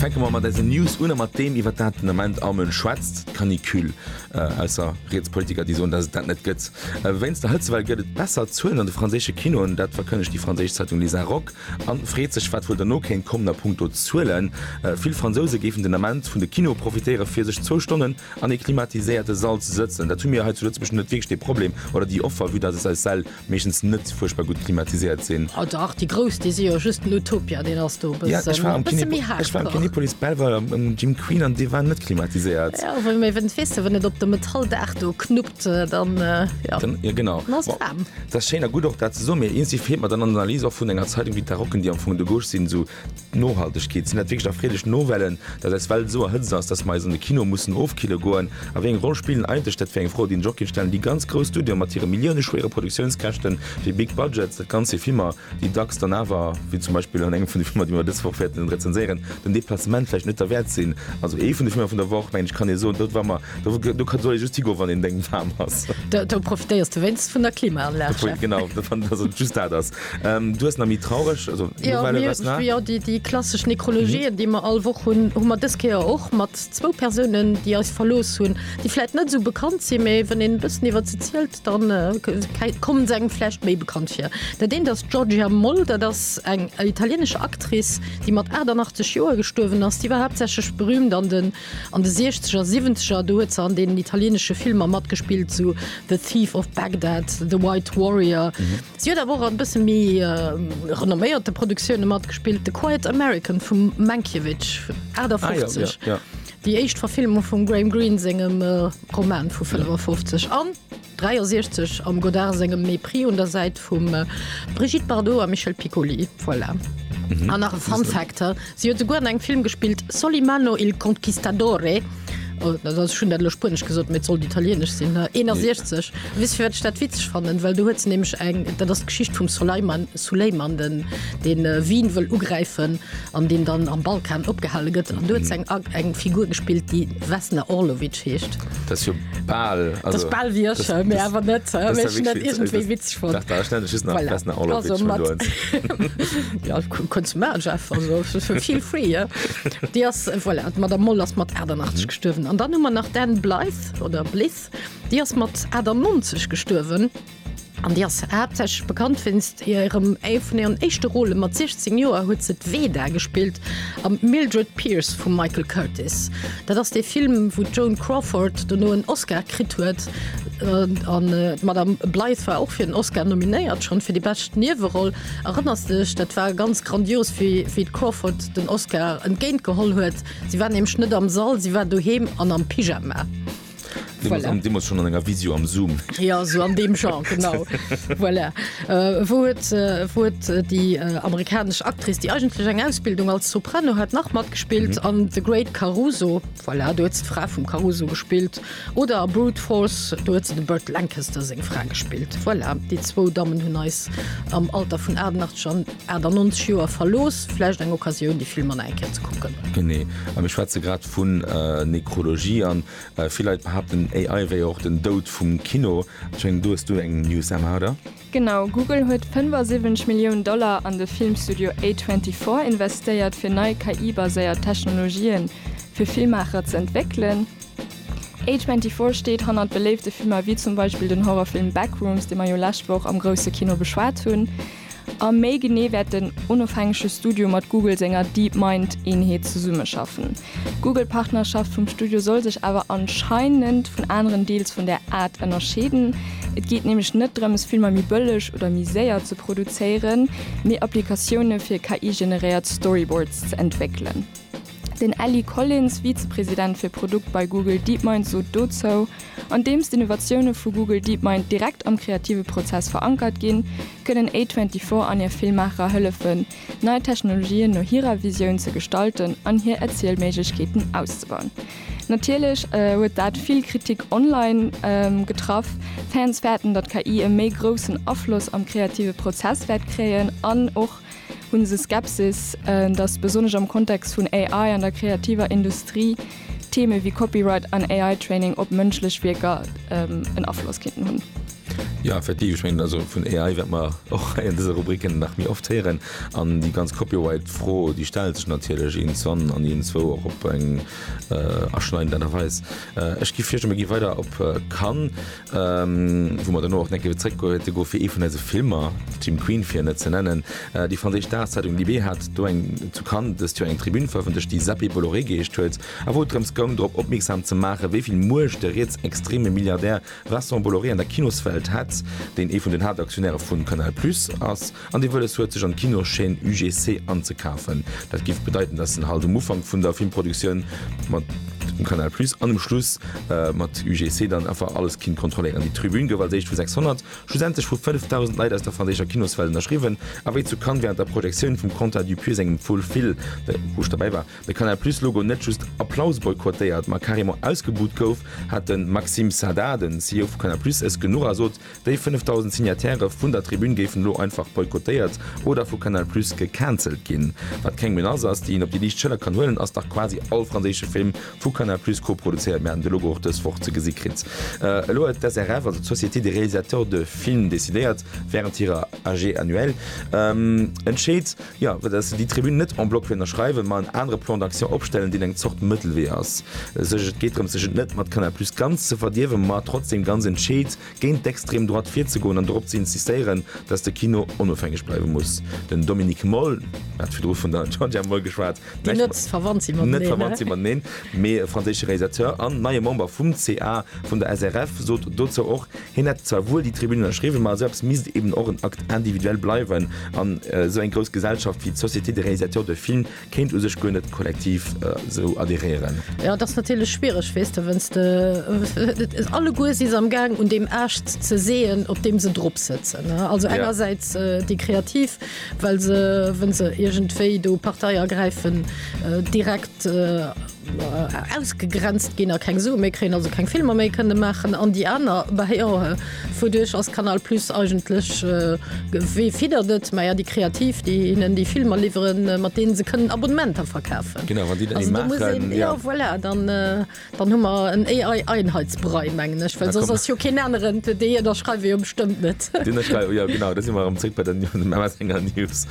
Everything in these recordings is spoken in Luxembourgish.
Fänke mer mat eisen News un a mat deem, iwwert dat den Ament all Mënsch schwätzt, d'Canicule. Ausser Rietspolitiker, déi soen, datt et dat net gëtt. Wéinst der Hëtzewell gëtt et besser Zuelen an de franséische Kinoen. Dat verkënnegt déi franséisch Zeitung Les Inrocks a freet sech, wat wuel dono kéint kommen a punkto Zuelen. Vill Fransouse géifen den Ament vun de Kinoe profitéiere fir sech zwou Stonnen an ee klimatiséierte Sall ze sëtzen. Dat hu mir hei zu Lëtzebuerg net wierklech dee Problem, oder déi Offer, vue datt eis Säll Meeschtens net fuerchtbar gutt klimatiséiert sinn. Oh dach, déi grouss, déi si jo just den Utopia, deen ass do e bëssen, e bësse méi hardcore. Ech war am Kinepolis Belval am Gym Queen an dee war net klimatiséiert. Jo, well mee wenn's, weess de, wann et op de Metalldach do knuppt, dann, jo, dann ass et waarm. Dat ass schéin a gutt och dat ze soen, mee iergendwéi feelt mer dann an der Analys och vun enger Zeitung wéi d'Darocken, déi am Fong de gauche sinn, esou D'Nohaltegkeet, Sinn dat wierklech erfreelech Novellen, datt eis Welt esou erhëtzt ass, datt mer eis an de Kino mussen ofkille goen? A wéi eng Roll spillen eigentlech dat fir eng Fro, déi den Jokin stellen, déi ganz grouss Studioe mat hire millioune-schwéiere Produktiounskäschten, déi big budgets, dat Ganzt fir Filmer, déi dacks dann awer, wéi zum Beispill an engem vun de Filmer, déi mer dës Woch wäerten rezenséieren, den Deplacement vläicht net derwäert sinn? Also ee vun de Filmer vun der Woch, mengen ech, kann ee soen, do war mer, do soll ee just higoen, wann een deng waarm ass. Do profitéiers de wéinstens vun der Klimaanlag, Jeff. Genau, datt ass et, just dat ass Ähm, du hast na mi traureg also, ja, ja, die, die klassische Nekrologien, mhm. die man all woch hun hu man des Keer och mat zwo Personenen, die als verlos hunn, die vielleicht net so bekannt si méi wann den bëssen iwwer ze zielelt, dann äh, kommen se engflecht méi bekannt fir. Dat den das Georgia Moll, dat das eng italienische Akris, die mat 88 Joer gestuerwen ass, die war hauptsächlich berühmt an den An de Siechzeger, Siwwenzeger, do huet se an deenen italienesche Filmer matgespillt, sou The Thief of Bagdad, The White Warrior. Si huet awer och a bësse méi renomméierte Produktioune matgespillt, The Quiet American vum Mankiewicz, 58, déi éischt Verfilmung vum Graham Greene sengem Roman vu 55, an. 63 am Godard sengem Mépris un der Säit vum Brigitte Bardot a Michel Piccoli. Voilà. Mhm. An nach e Fun Fact, si huet souguer an engem Film gespillt, Solimano il Conquistadore. Oh, dat ass schon dat lo Spuenesch gesot, mee et sollt Italienesch sinn. ne? 61. Weess fir wat ech dat witzeg fannen, well do huet se nämlech eng, dat ass d'Geschicht vum Soleiman, Zu Léimanden den Wien wëll ugräifen an deen dann am Balkan opgehale gëtt an do huet se eng Figur gespillt déi Vesna Orlovic heescht. Dat ass jo bal, dat ass bal wéi ech, mee awer net, mee ech hunn dat iergendwéi witzeg fonnt. Dach dach, ech nennt dech just nach voilà Vesna Orlovic vun do un. Jo kuns man Jeff, also feel free hein. Déi ass voilà d'Madame Moll ass mat 88 gestuerwen an dann hu mer nach d'Anne Blyth oder Blyth déi ass mat 98 gestuerwen. An déi ass haaptsächlech bekannt wéinst hirem Avenir an éischte Rôlen. Mat 16 Joer huet se d'Veda gespillt am Mildred Pierce vum Michael Curtiz. Dat ass dee Film, wou d'Joan Crawford dono en Oscar kritt huet. An d'Madame Blythe war och fir en Oscar nominéiert, schonn fir déi bescht Nieweroll. Erënners de dech? Dat war ganz grandios, wéi d'Crawford den Oscar entgéint geholl huet. Si war nämlech net am Sall, si war doheem an am Pyjama. Voilà. Di muss schon an enger Visio am Zoom. Ja so an deem Genre genau. voilà. äh, wou huet äh, wou huet äh, déi äh, amerikanesch Actris, déi eigentlech eng Ausbildung als Soprano hat nach matgespillt mhm. an The Great Caruso voilà, du huet ze Fra vum Caruso gespillt oder a Brut Force du huet ze de Bird Lancaster seng Fra gespillt. Voilà. Déi zwou Dammmen hunn eis am Alter vun 88 schon 98 Joer verlooss, vläicht eng Occasioun, déi Film an enker ze kucken. Genee. Am ech schwätze grad vun Nekrologie an vill Leit behaapten AI wéi och den Doud vum Kino. Ech mengen do hues du eng News Emma, oder? Genau, Google huet 75 Milliounen Dollar an de Filmstudio A24 investéiert fir nei KI-baséiert Technologië fir Filmmaacher ze entwéckelen. A24 steet hannert beléifte Filmer wéi zum Beispill den Horrorfilm Backrooms, dee mer jo lescht Woch am grousse Kino beschwat hunn. A méi genee wäert den onofhängege Studio mat Google senger DeepMind-Eenheet zesummeschaffen. D'Google-Partnerschaft vum Studio soll sech awer anscheinend vun aneren Deals vun der Ad ënnerscheeden. Et geet nämlech net drëms, Filmer méi bëlleg oder méi séier ze produzéieren, mee Applikatioune fir KI-generéiert Storyboards ze entwéckelen. Den Elly Collins, Vizepresident fir Produkt bei Google DeepMind sot dozou, Andeems d'Innovatioune vu Google DeepMind direkt am kreative Prozess verankert ginn, kënnen A24 an hir Filmmacherer hëllefen, nei Technologien no hirer Visioun ze gestalten an hir Erzielméiglechkeeten auszebauen. Natierlech huet dat vill Kritik online getraff. Fans fäerten, datt KI e méi groussen Afloss am kreative Prozess wäert kréien an och Hunn se Skepsis, datt besonnesch am Kontext vun AI an der kreativer Industrie Theme wéi Copyright an AI-Training op mënschlech Wierker en Afloss kéinten hunn? Jo, effektiv. Ech mengen, also vun AI wäerte mer och hei an dëser Rubrik nach méi oft héieren. An déi ganz Copyright-Fro, déi stellt sech natierlech iergendzwann an iergendzwou och op eng aschneidend Aart a Weis. Ech gi virschloen, mir gi weider op Cannes. Wou mer dono och enke zréckgoete gouf fir ee vun eise Filmer, Team Queen fir net ze nennen. Déi franséisch Dagszeitung Libé hat do eng zu Cannes dëst Joer eng Tribün verëffentlecht, déi Zappé Bolloré geheescht huet, a wou et drëms goung drop opmierksam ze maachen, wéi vill Muecht de rietsextreme Milliardär Vincent Bolloré an der Kinoswelt hätt, deen ee vun den Haaptaktionäre vu Canal Plus ass. An dee Wëlles huet sech an d'Kinochaîne UGC anzekafen. Dat giff bedeiten dass en halt um Ufank vun der Filmproduktioun mat dem Canal Plus an um Schluss mat UGC dann einfach alles kinnt kontrolléieren. Déi Tribün gouf als éischt vu 600, schlussendlech vu 5.000 Leit aus der franséischer Kinoswelt ënnerschriwwen. A wéi zu Cannes wärend der Projektioun vum Quentin Dupieux sengem Full Fil, de Rouge derbäi war, de Canal Plus Logo net just Applaus boykottéiert, ma carrément ausgebuht gouf, hat de Maxime Saada, den CEO vu Canal Plus, es genuch a sot Déi 5.000 Signataire vun der Tribün géifen elo einfach boykottéiert oder vu Canal Plus gecancelt ginn. Wat keng Menace ass, déi een op déi liicht Schëller kann huelen, ass dach quasi all franséische Film vu Canal Plus koproduzéiert. Mir haten de Logo och dës Woch ze gesi kritt. Elo huet d'SRF, also d'Société des réalisateurs de films, decidéiert, wärend hirer AG annuelle entscheet, Jo, fir dass se déi Tribün net en bloc ënnerschreiwen, ma en anere Plan d'action opstellen, deen eng Zort Mëttelwee ass, sech, et geet drëm, sech et net mat Canal Plus ganz ze verdierwen, ma trotzdeem ganz entscheet géint d'extrem Droite virzegoen an dorop ze insistéieren, dass de Kino onofhängeg bleiwe muss. Den Dominique Moll, mir hate virdru vun der Georgia Moll geschwat, déi net verwannt si mateneen, mee e franséische Realisateur an neie Member vum ca vun der SRF, sot dozou och, Hien hätt zwar wuel déi Tribün ënnerschriwwen, ma esou eppes misst eben och en Acte individuel bleiwen an esou eng grouss Gesellschaft wéi d'Société des réalisateurs de films kéint u sech guer net kollektiv esou adhéréieren. Jo, et ass natierlech schwiereg, weess de, wënns de, et alleguer si se am gaang un deem Aascht ze seeën, op deem se drop sëtzen. Also engersäits déi Kreativ, well se, wënn se iergendwéi do Partei ergräifen, direkt, ausgegrenzt ginn a keng Sue méi kréien, also keng Filmer méi kënne maachen an déi aner bah jo wouduerch ass Canal Plus eigentlech wéi fiddert et? Maja déi Kreativ, déi hinnen déi Filmer liwwere mat deene se kënnen Abonnementer verkafen. Genau, wann déi dann ee maachen, jo. Also do muss een, jo voilà, dann dann hu mer en AI-Einheitsbrei mengen ech, well soss ass jo keen aneren, déi hien da schreiwe jo bestëmmt net. Deen da schrei, jo genau, do si mer erëm zréck bei der MS Enger News.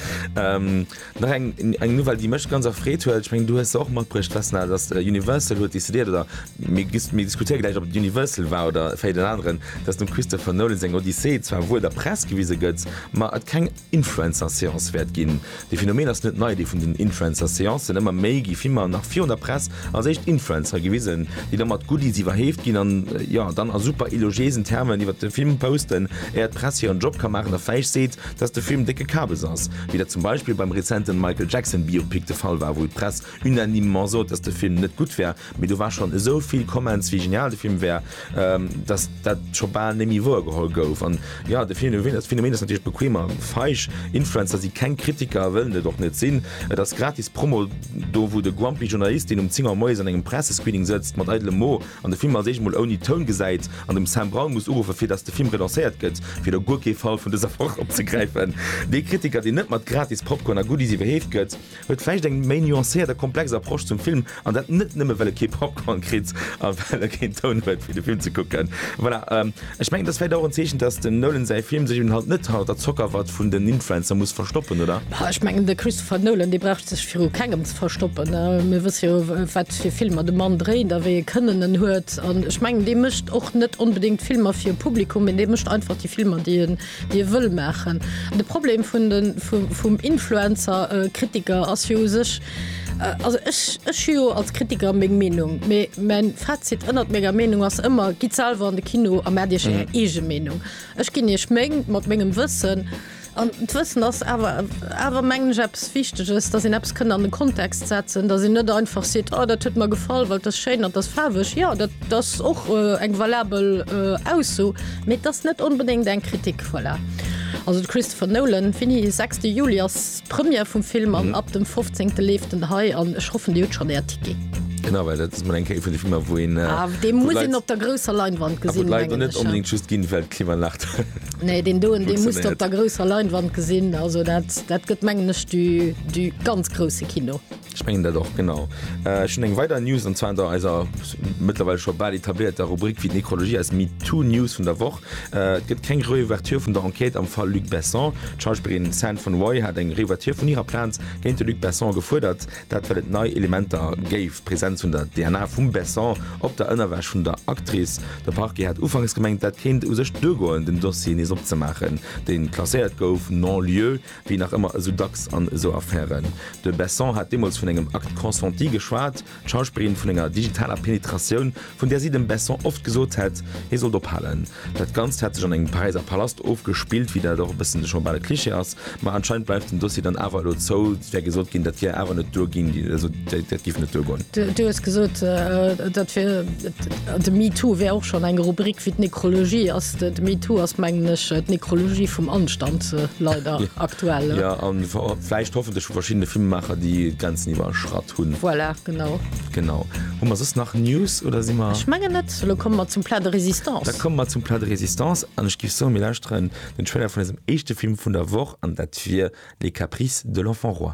Nach eng eng Nouvelle déi mech ganz erfreet huet, ech mengen du hues se och matbruecht Vesna, datt Universal huet decidéiert oder mir gis mir diskutéiere gläich op et Universal war oder vläicht en aneren, datt dem Christopher Nolan seng Odyssee zwar wuel der Press gewise gëtt, ma et keng Influencer-Seance wäert ginn. De Phenomen ass net nei, dee vun den Influencer-Seancen, ëmmer méi gi Filmer nach virun der Press als éischt Influencere gewisen, déi da mat Goodies iwwerhéeft ginn an jo dann a super elogiéisen Termen iwwert de Film posten, éier d'Press hiren Job ka maachen a fäeg seet, dass de Film décke Kabes ass, wéi dat zum Beispill beim rezenten Michael Jackson Biopic de Fall war, wou d'Press unanimement sot, dass de Film net gutt wär, mee do war schonn esou vill Comments, wéi genial de Film wär, dass dat scho bal net méi wouer geholl gouf. An jo, de Phänomen ass natierlech bequem a feig. Influencer si keng Kritiker a wëllen et och net sinn. Et ass gratis Promo do, wou de grumpy Journalist, deen um 10 Auer moies an engem Pressescreening sëtzt, mat eidlem Mo, An de Film als éischt mol ouni Toun gesäit, an dem Sam Brown muss uruffen, fir datt de Film relancéiert gëtt, fir do guer kee Fall vun dëser Woch opzegräifen. Dee Kritiker, deen net mat gratis Popcorn a Goodies iwwerheeft gëtt, huet vläicht eng méi nuancéiert a komplex Approche zum Film, an dat net nëmme well e kee Popcorn kritt a well e keen Toun huet fir de Film ze kucken. Voilà. Ech mengen, dass vläit och en Zeechen, dass dem Nolan säi Film sech un halt net hâlt a d'Zockerwatt vun den Influencer muss verstoppen, oder? Bah, ech mengen, de Christopher Nolan, dee brauch sech viru kengem ze verstoppen. Mir wësse jo, wat fir Filmer de Mann dréint a wéi ee Kënnen en huet. An ech mengen, dee mécht och net onbedéngt Filmer fir e Publikum, mee dee mécht einfach déi Filmer, déi e Dir wëll maachen. De Problem vun de vum Influencer Kritiker ass jo u sech, also ech ech hu jo als Kritiker meng Meenung, mee mäin Fazit ënnert menger Meenung ass ëmmer, gitt selwer an de Kino a maacht iech är eege Meenung. Ech ginn iech meng mat mengem Wëssen, an d'Wëssen ass awer awer mengen ech eppes Wichteges, datt een eppes kënnt an de Kontext setzen, datt een net einfach seet, oh dat huet mer gefall, well et ass schéin an et ass faarweg. Jo dat ass och eng valabel Ausso. Mee et ass net onbedéngt eng Kritik, voilà. Also de Christopher Nolan, fini, 6 de Juli ass d'Première vum Film an ab dem 15 leeft en hei an ech hoffen dir hutt schonn äert Ticket. Genau, well dat ass mol eng Kéier vun de Filmer, wou een, Ah, wou dee muss d'Leit- een op der grousser Leinwand a wou gesinn, d'Leit mengen net ech, ja. onbedéngt just ginn, well d'Klimaanlag Nee, deen doen, dee muss de op funktionéiert. der grousser Leinwand gesinn. Also dat, dat gëtt, mengen ech, du, du ganz grouse Kino. Ech mengen dat och, genau. Ech hunn eng weider News, an zwar der eiser mëttlerweil scho bal etablierter Rubrik Wéi d'Nekrologie eis MeToo-News vun der Woch. Et gëtt keng Reouverture vun der Enquête am Fall Luc Besson. D'Schauspillerin San Von Roy hat eng Reouverture vun hirer Plainte géint de Luc Besson gefuerdert. Dat well et nei Elementer géif, d'Presenz vun der DNA vum Besson op der Ënnerwäsch vun der Actrice. De Parquet hat ufanks gemengt, dat kéint u sech duergoen, den Dossier nees opzemaachen, deen klasséiert gouf non-lieu. Wéi nach ëmmer esou dacks an esou Affären. De Besson hat deemools vun engem Acte consenti geschwat, d'Schauspillerin vun enger digitaler Penetratioun, vun där si dem Besson oft gesot hätt, hie sollt ophalen. Dat Ganzt hätt sech an engem Paräiser Palast ofgespillt, wéi dat och e bëssen scho bal e Cliché ass. Ma anscheinend bleift den Dossier dann awer elo zou. Et wär gesot ginn, dat wier awer net duer ginn. Dat giff net duergoen. Du hues gesot, dat fir de MeToo wär och schonn eng Rubrik fir d'Nekrologie. Ass de MeToo ass mengen ech d'Nekrologie vum Anstand leider aktuell. Jo an vläicht hoffentlech vu verschiddene Filmemaacher, déi d'Grenzen iwwerschratt hunn. Voilà, genau. Genau. Hu mer soss nach News oder si mer. Ech mengen net. Elo komme mer zum Plat de Résistance. Da komme mer zum Plat de Résistance an ech giff soen, mir lauschteren den Trailer vun eisem éischte Film vun der Woch an dat wier Les Caprices de l'enfant roi.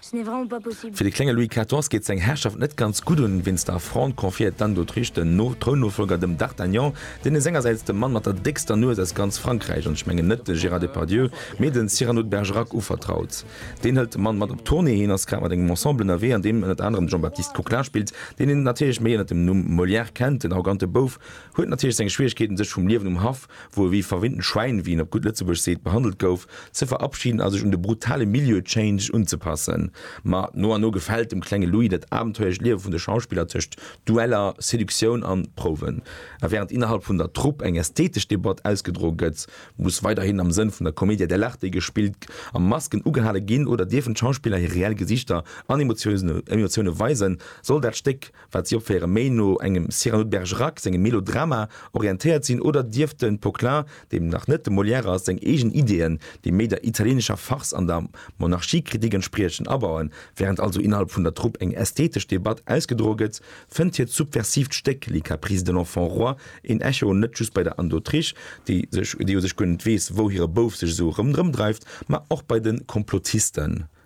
Fir de klenge Louis XIV. Geet seng Herrschaft net ganz gutt un. Wéinst der Affront confiéiert d'Anne d'Autriche den Trounnofolger dem D'Artagnan, deen e sengersäits de Mann mat der déckster Nues aus ganz Frankräich, an ech mengen net de Gérard Depardieu, mee de Cyrano de Bergerac uvertraut. Deen hëlt de Mann mat op d'Tournée, hien ass grad mat engem Ensemble ënnerwee, an deem ënnert anerem de Jean-Baptiste Coquelin spillt, deen een natierlech méi ënnert dem Numm Molière kennt. Den arrogante Bouf huet natierlech seng Schwieregkeeten, sech vum Liewen um Haff wou e wéi verwinnten Schwäin, wéi een op gutt Lëtzebuergesch seet, behandelt gouf, ze verabschiden a sech un de brutale Milieu-Change unzepassen. Ma no an no gefält dem klenge Louis dat abenteuerlecht Liewe vun de Schauspiller tëscht Dueller, Seduktioun an Prouwen. A während innerhalb vun der Trupp eng ästhetesch Debatt ausgedroe gëtt, muss weiderhin am Sënn vun der Commedia dell'arte gespillt a Masken ugehale ginn. Oder dierfen d'Schauspiller hir reell Gesiichter an Emotioune weisen, soll dat Stéck wat si opféieren, méi no engem Cyrano de Bergerac sengem Melodrama orientéiert sinn, oder dierft de Poquelin, deem nach net de Molière ass, seng eegen Ideeën, déi méi der italieenescher Farce an der Monarchiekritik entspriechen, abauen? Während also innerhalb vun der Trupp eng ästhetesch Debatt ausgedroe gëtt, fënnt hiert subversivt Stéck Les caprices de l'enfant roi een Echo net just bei der Anne d'Autriche, déi sech, déi u sech guer net weess, wou hire Bouf sech esou erëm drëmdreift, ma och bei de Komplotisten,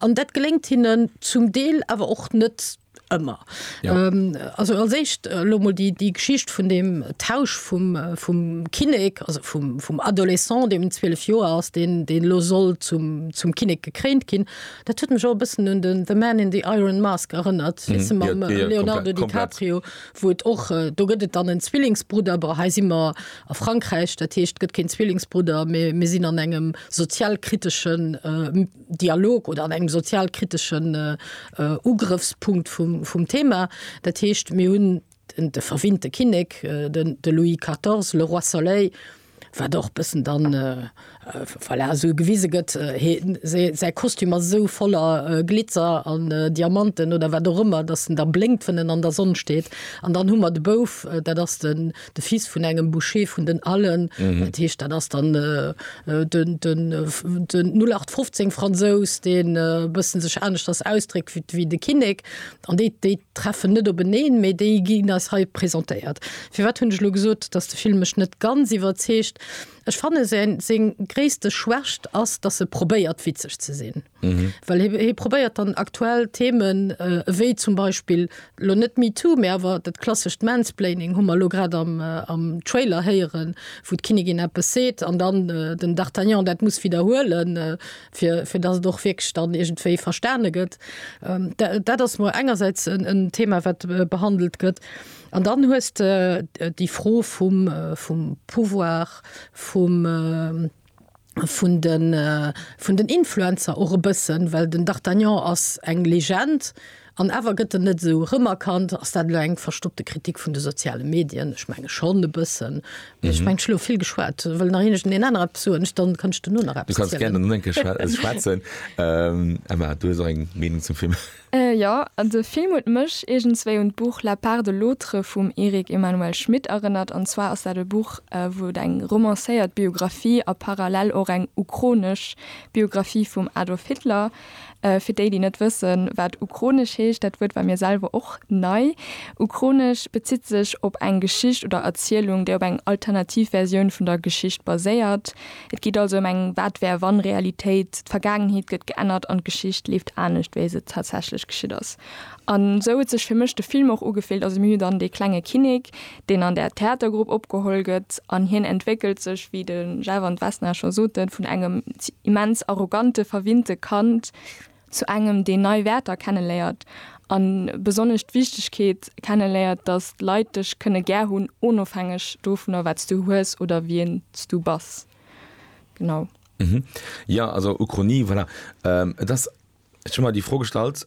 An dat geléngt hinnen zum Deel, awer och net ëmmer. Also als éischt elo mol déi Geschicht vun deem Tausch vum Kinnek, also vum Adolescent, deem 12 Joer ass, deen elo soll zum Kinnek gekréint ginn. Dat huet mech och e bëssen un den The Man in the Iron Mask erënnert, weess de, mam Leonardo DiCaprio, wou et och, do gëtt et dann en Zwillingsbrudder, bon, hei si mer a Frankräich, dat heescht, et gëtt keen Zwillingsbrudder, mee mir sinn an engem. sozialkriteschen Dialog oder an engem sozialkriteschen Ugrëffspunkt vum Thema. Dat heescht, mir hunn de verwinnte Kinnek, de Louis 14, le roi soleil, wat och e bëssen dann, voilà, esou gewise gëtt, säi Kostüm ass esou voller Glitzer an Diamanten oder wat och ëmmer, datt en da blénkt, wann en an der Sonn steet. An dann hu mer de Bouf, dat ass de. de Fils vun engem Boucher vun den Allen, dat heescht dat ass dann den den den 0815 Fransous, deen e bësse sech aneschters ausdréckt wéi wéi de Kinnek. An déi déi treffen net openeen, mee déi ginn eis hei presentéiert. Firwat hunn ech elo gesot, datt de Film mech net ganz iwwerzeegt? Ech fanne säin seng gréisste Schwächt ass, datt e probéiert witzeg ze sinn. Well hie probéiert dann aktuell Themen, ewéi zum Beispill, elo net MeToo, mä awer dat klassescht Mansplaining, hu mer elo grad am Trailer héieren, wou d'Kinnigin eppes seet an dann den D'Artagnan dat muss widderhuelen, fir datt et och wierklech dann iergendwéi verstane gëtt. Dat ass mol engersäits en Thema, wat behandelt gëtt. An dann hues de déi Fro vum Pouvoir, vum. vun den, vun den Influencer och e bëssen, well den D'Artagnan ass eng Legend an awer gëtt en net esou rëmerkannt. Ass dat elo eng verstoppte Kritik vun de soziale Medien? Ech menge schonn e bëssen. Mee ech mengen, ech hunn elo vill geschwat. Wëll nach een Iech deen aner eppes soen? Dann kanns de duerno nach eppes zielen. Du kanns gären elo nach eng Kéier schwätzen. Emma, du hues och eng Meenung zum Film? Äh jo, de Film huet mech iergendswéi un d'Buch La part de l'autre vum Eric Emmanuel Schmitt erënnert, an zwar ass dat e Buch, wou et eng romancéiert Biographie a parallel och eng ukronesch Biographie vum Adolf Hitler, fir déi, déi net wëssen, wat ukronesch heescht, dat Wuert war mir selwer och nei, ukronesch bezitt sech op eng Geschicht oder Erzielung, déi op eng alternativ Versioun vun der Geschicht baséiert. Et geet also ëm eng Wat-wär-wann-Realitéit, d'Vergaangenheet gëtt geännert an d'Geschicht leeft anescht, wéi se tatsächlech geschitt ass. An esou huet sech fir mech de Film och ugefillt. Also mir hu dann dee klenge Kinnek, deen an där Theatergrupp opgeholl gëtt an hien entwéckelt sech, wéi de Jeff an d'Vesna scho soten, vun engem immens arrogante, verwinnte Kand, Zu engem, deen nei Wäerter kenneléiert a besonnesch d'Wichtegkeet kenneléiert, datt d'Leit dech kënne gär hunn, onofhängeg dovunner, wat s du hues oder wien s du bass. Genau. Jo, also Uchronie, voilà. Et ass, ech hu mer déi Fro gestallt.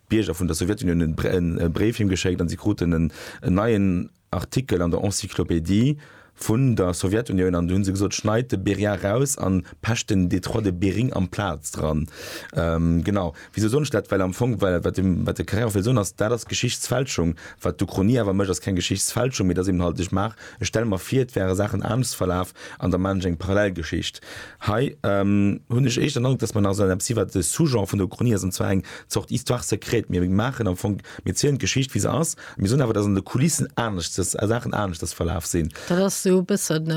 Bierger vun der Sowjetunioun hunn e Bréif him geschéckt an si kruten en neien Artikel an der Encyclopédie vun der Sowjetunioun an du hunn se gesot, schneit de Beria raus an pecht den Détroit de Bering amplaz dran. Genau. Wisou soen ech dat? Well am Fong, well wat de Carrère och wëll soen ass, dat ass Geschichtsfälschung. Wat d'Uchronie awer mécht, ass keng Geschichtsfälschung, mee et ass eeben halt, ech maach Ech stelle mer vir, et wäre Saachen anescht verlaf an der Manche eng parallel Geschicht. Hei hunn ech éischter den Androck, dass mer nach esoueppes si wat de Sous-genre vun der Uchronie ass, an zwar eng Zort Histoire secrète. Mir maachen am Fong, mir zielen d'Geschicht wéi se ass, a mir soen awer, dass an de Kulissen aneschtes, Saachen aneschtes verlaf sinn. Dat ass esou e bëssen,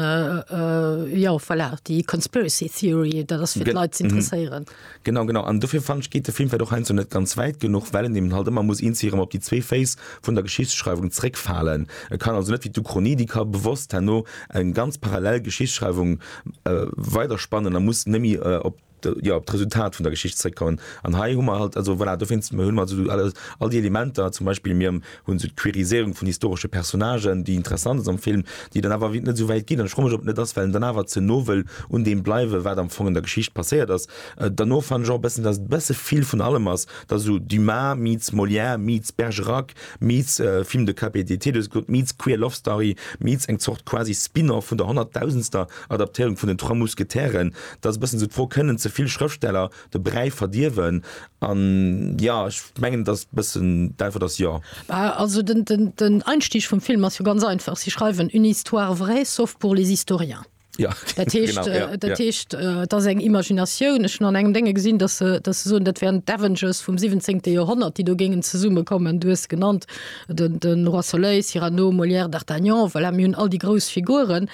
jo, voilà, déi Conspiracy Theory, dat ass fir d'Leit z'interesséieren. Genau, genau. An dofir fannen ech geet de Film vläit och heiansdo net ganz wäit genuch, well en eben halt ëmmer muss eens erëm op déi zwee Féiss vun der Geschichtsschreiwung zréckfalen. E kann also net wéi d'Uchronie, déi ka bewosst herno eng ganz parallel Geschichtsschreiwung weiderspannen a muss némmi op, jo, op d'Resultat vun der Geschicht zréckkommen. An hei hu mer halt, also voilà, dowéinst hunn mer also all déi Elementer, zum Beispill mir hunn sou d'Queeriséierung vun historesche Personnagen, déi interessant ass am Film, déi dann awer net esou wäit geet. An ech fro mech, ob et net ass, well en dann awer ze no wëll un deem bleiwen, wat am Fong an der Geschicht passéiert ass. Derno fannen ech och e bëssen, datt et e bësse vill vun allem ass, et ass esou Dumas meets Molière meets Bergerac meets Film de Cape et d'Été, du hues et gesot, meets Queer Love Story meets eng Zort quasi Spin-off vun der honnertdausendster Adaptéierung vun den Trois Mousquetaires. Et ass e bëssen esou d'Fro, Kënnen ze vill Schrëftsteller De Bräi verdierwen an jo ech mengen dass bëssen d'Äntwert ass jo. Bah, also den, den, den Einstieg vum Film ass jo ganz einfach. Si schreiwen une histoire vraie sauf pour les historiens. Ja, Dat heescht, genau, ja, äh, dat ja. heescht, äh, et ass eng Imaginatioun. Ech hunn an engem Dénge gesinn, dass se, dass se soen, dat wären d'Avengers vum 17. Joerhonnert, déi do géingen zesummekommen. Du hues genannt den, den Roi Soleil, Cyrano, Molière, d'Artagnan, voilà, mir hunn all déi grouss Figuren.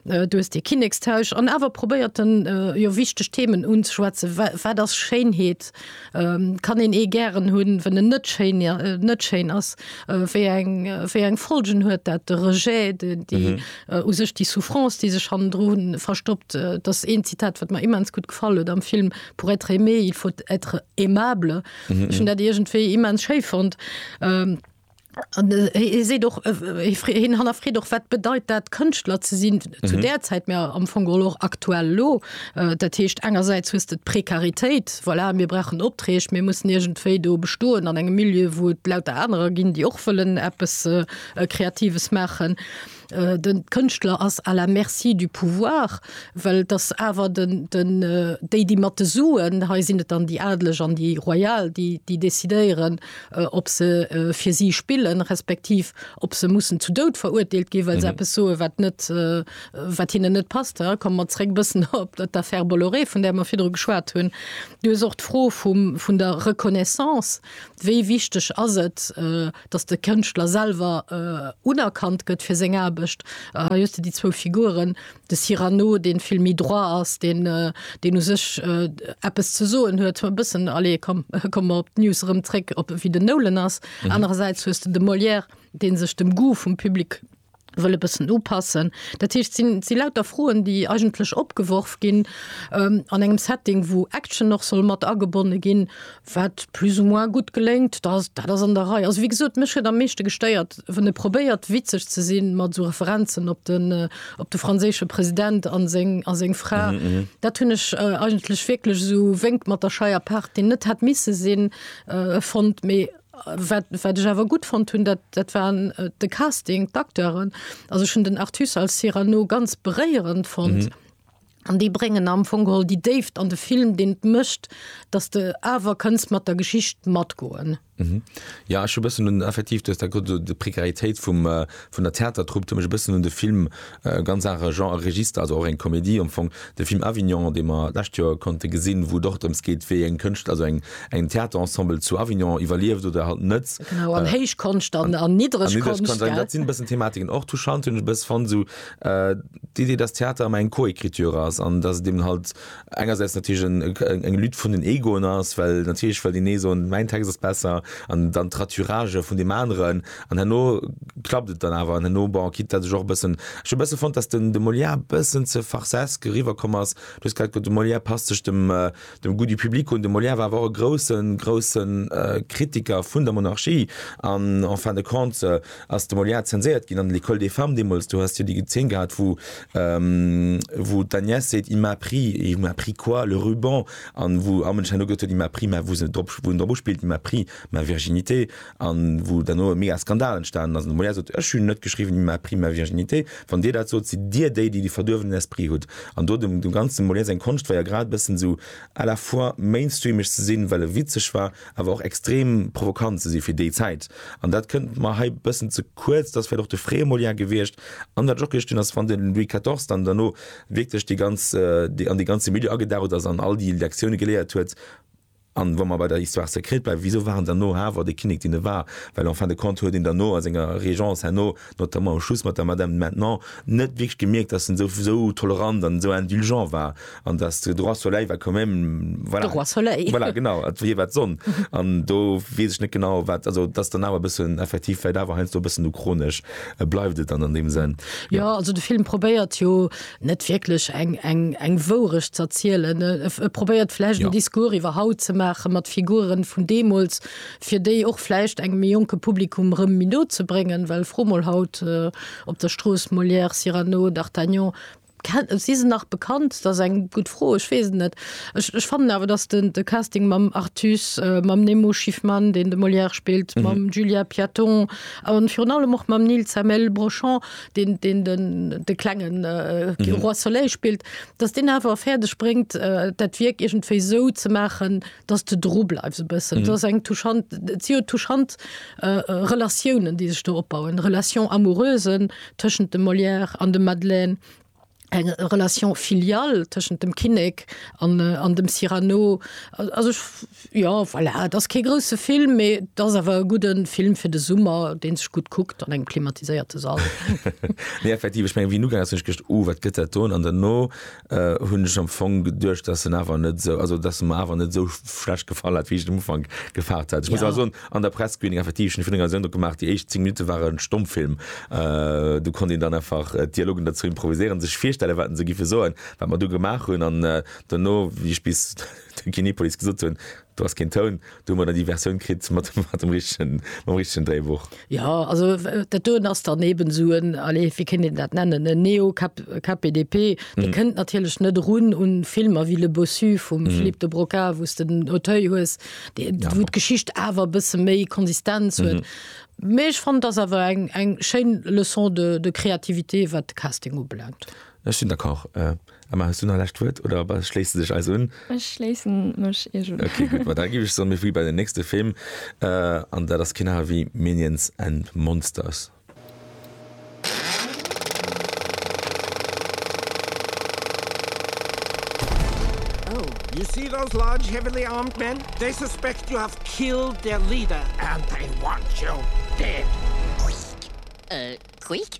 Du hues dee Kinnekstausch an awer probéiert en jo wichteg Themen unzeschwätzen. Wat ass Schéinheet? Kann een ee gären hunn, wann en net schéin net schéin ass? Wéi eng wéi eng Folgen huet dat? De Rejet, déi u sech déi Souffrance, déi sech hannendru verstoppt, dat ass een Zitat, wat mer immens gutt gefall huet am Film, Pour être aimé, il faut être aimable. Ech hunn dat iergendwéi immens schéi fonnt. Hie seet och, hien hannerfreet och, wat bedeit dat, Kënschtler ze sinn zu där Zäit, mä am Fong geholl och aktuell elo. Dat heescht, engersäits hues de d'Prekaritéit, voilà, mir brauchen Opträg, mir mussen iergendwéi do bestoen an engem Milieu, wou et lauter anerer ginn, déi och wëllen eppes Kreatives maachen. Den Kënschtler ass à la merci du pouvoir, well et ass awer den, den, déi, déi mat de Suen, hei sinn et dann déi Adeleg an déi Royal, déi, déi décidéieren, ob se fir si spillen, respektiv ob se mussen zu Doud verurteelt ginn, well se eppes soen, wat net, wat hinnen net passt. Da komme mer zréck e bëssen op d'Affaire Bolloré, vun där mer virdru geschwat hunn. Du hues och d'Fro vum, vun der Reconnaissance, Wéi wichteg ass et, dass de Kënschtler selwer unerkannt gëtt fir seng Aarbecht. Hei hues de déi zwou Figuren, de Cyrano, dee vill méi droit ass, deen, deen u sech eppes ze soen huet, e bëssen, allez, komm, komme mer op d'News erëm zréck, op wéi den Nolan ass. Anerersäits hues de de Molière, dee sech dem Goût vum Public wëll e bëssen upassen. Dat heescht, et sinn, et si lauter Froen, déi eigentlech opgeworf ginn an engem Setting, wou Action och soll mat agebonne ginn, wat plus ou moins gutt geléngt. Da ass, dat ass an der Rei. Also wéi gesot, mech huet am meeschte gestéiert, wann e probéiert, witzeg ze si mat esou Referenzen op de, op de franséische President a seng, a seng Fra. Dat hunn ech eigentlech wierklech esou wénkt mat der Scheierpaart, déi net hätt misse sinn, fonnt. Mee. Wat, wat ech awer gutt fonnt hunn, dat, dat war de Casting, d'Acteuren. Also ech hunn den Artus als Cyrano ganz beréierend fonnt. An déi bréngen am Fong geholl déi Déift an de Film, deen et mécht, datt s de awer kënns mat der Geschicht matgoen. Jo, ech hu e bëssen un, effektiv, du hues dat gesot, esou d'Précaritéit vum, Vun der Theatertrupp, huet mech e bëssen un de Film, ganz anere Genre a Register, also och eng Komedie am Fong, de Film Avignon, dee mer d'lescht Joer konnte gesinn, wou et och drëms geet, wéi eng Kënscht, also eng Theaterensemble zu Avignon iwwerlieft oder halt net. Genau, an héich Konscht an niddereg Konscht, gell. Dat sinn e bëssen Thematiken. Och touchant hunn ech e bësse fonnt esou d'Idee, dass Theater ëmmer eng Co-Ecriture ass an dass et eben halt engersäits natierlech eng Lutte vun den Egoen ass, well natierlech well deen ee soen, mäin Text ass besser, an dann d'Raturage vun deem aneren, an herno klappt et dann awer, an herno, bon, quitte dat ech och e bëssen, ech hu e bësse fonnt, datt den de Molière e bëssen ze farcesk eriwwer komm ass, du hues grad gesot, de Molière passt sech dem dem goût du public un, de Molière war awer och e groussen, groussen Kritiker vun der Monarchie, an en fin de compte, Ass de Molière zenséiert ginn an L'Ecole des femmes deemools? Do has de jo déi Zeen gehat, wou wou d'Agnès seet, Il m'a pris, il m'a pris quoi? Le ruban an wou Armand Chanut gesot huet, Il m'a pris, mä wou se drop wou en drop uspillt, Il m'a pris ma virginité an wou derno e mega Skandal entstanen ass an de Molière sot, Ech hunn net geschriwwen, Il m'a pris ma virginité. Wann Dir dat sot, sidd Dir déi, déi de verduerwenen Esprit hutt an do dem ganzen Molière seng Konscht war jo grad e bëssen esou à la fois mainstreameg ze sinn, well e witzeg war, awer och extrem provokant ze si fir déi Zäit. An dat kënnt mer hei bëssen ze kuerz, dat ass vläicht och de Frémolien gewierscht an wat och gestinn ass, wann den Louis quatorze dann derno wierklech déi ganz, an dee ganze Milieu agedaucht ass an all déi Lektione geléiert huet. An wa mer bei der Histoire secrète bleiwen, wisou war en dann no hawer de Kinnek, deen e war? Well en fin de compte huet een dann no a senger Régence herno notamment um Schluss mat der Madame de Maintenon, net wierklech gemierkt, dass en esou tolerant an esou indulgent war an dass de Droit soleil war quand même, voilà. De Roi soleil. Voilà, genau, et wier wat d'Sonn. An do weess ech net genau, wat, also dass dann awer e bëssen effektiv vläicht awer heiansdo e bëssen uchronesch bleift et dann an deem Sënn. Jo, also de Film probéiert jo net wierklech eng Wourecht z'erzielen. E probéiert vläicht en Discours iwwer haut ze maachen, mat Figuren vun deemools, fir déi och vläicht engem méi jonke Publikum rëm méi no ze bréngen, well fro mol haut op der Strooss, Molière, Cyrano, d'Artagnan, si se nach bekannt? Dat ass eng gutt Fro, ech weess et net. Ech ech fannen awer, datt den de Casting mam Artus, mam Nemo Schiffman, deen de Molière spillt, mam Julien Piaton a virun allem och mam Nil Zemmel Brochon, deen deen den de klenge Roi Soleil spillt, datt deen awer fäerdeg bréngt, dat Wierk iergendwéi esou ze maachen, dass du dru bleifs e bëssen. Mhm. ass eng touchant Zio touchant äh, Relatiounen, déi sech do opbauen. Relation amoureusen tëschent dem Molière an dem Madeleine, eng Relation filial tëschent dem Kinnek an, äh, an dem Cyrano. Also ich, ja voilà, dat ass kee grouse Film, mee dat ass awer e gudden Film fir de Summer, deen sech gut kuckt an engem klimatiséierte Sall. Nee, effektiv, ech meng, wéi nugeet ass, hunn ech gedacht, oh, wat gëtt dat do? An dann no, hunn ech am Fong geduecht, dass en awer net esou, also dass e mer awer net esou schlecht gefall hat, wéi ech et um Ufank gefaart hat. Ech muss awer soen, an der Press-Screening effektiv, ech hunn den Eindrock gemaach, déi éischt 10 Minutte ware Stommfilm. Do konnt een dann einfach d'Dialogen derzou improviséieren, sech virstellen, wat se giffe soen, wat mer du gemaach hunn. An duerno, wéi ech bis de Kinepolis gesot hunn, Do ass keen Toun, do hu mer dann déi Versioun kritt mat dem richtegen, mam richtegen Dréibuch. Jo, also dat doen ass dann eben esou en, allez, wéi kéint een dat nennen, en Neo-KPDP. Dee kënnt natierlech net erun un Filmer wéi Le Bossu vum Philippe de Broca, wou s de den Auteuil hues, wou d'Geschicht awer e bësse méi Konsistenz huet. Mee ech fannen, et ass awer eng schéin Leçon de créativité, wat de Casting ubelaangt. Ech sinn d'accord. Emma, hues du nach e lescht Wuert oder ba schléisse dech eis un? Ech schléisse mech iech un. Okay, gutt. Ma da giff ech soen, mir flitt bei den nächste Film, an dat ass keen aner wéi Minions and Monsters. Oh, you see those large heavily armed men? They suspect you have killed their leader and they want you dead. Quick, eh, quick?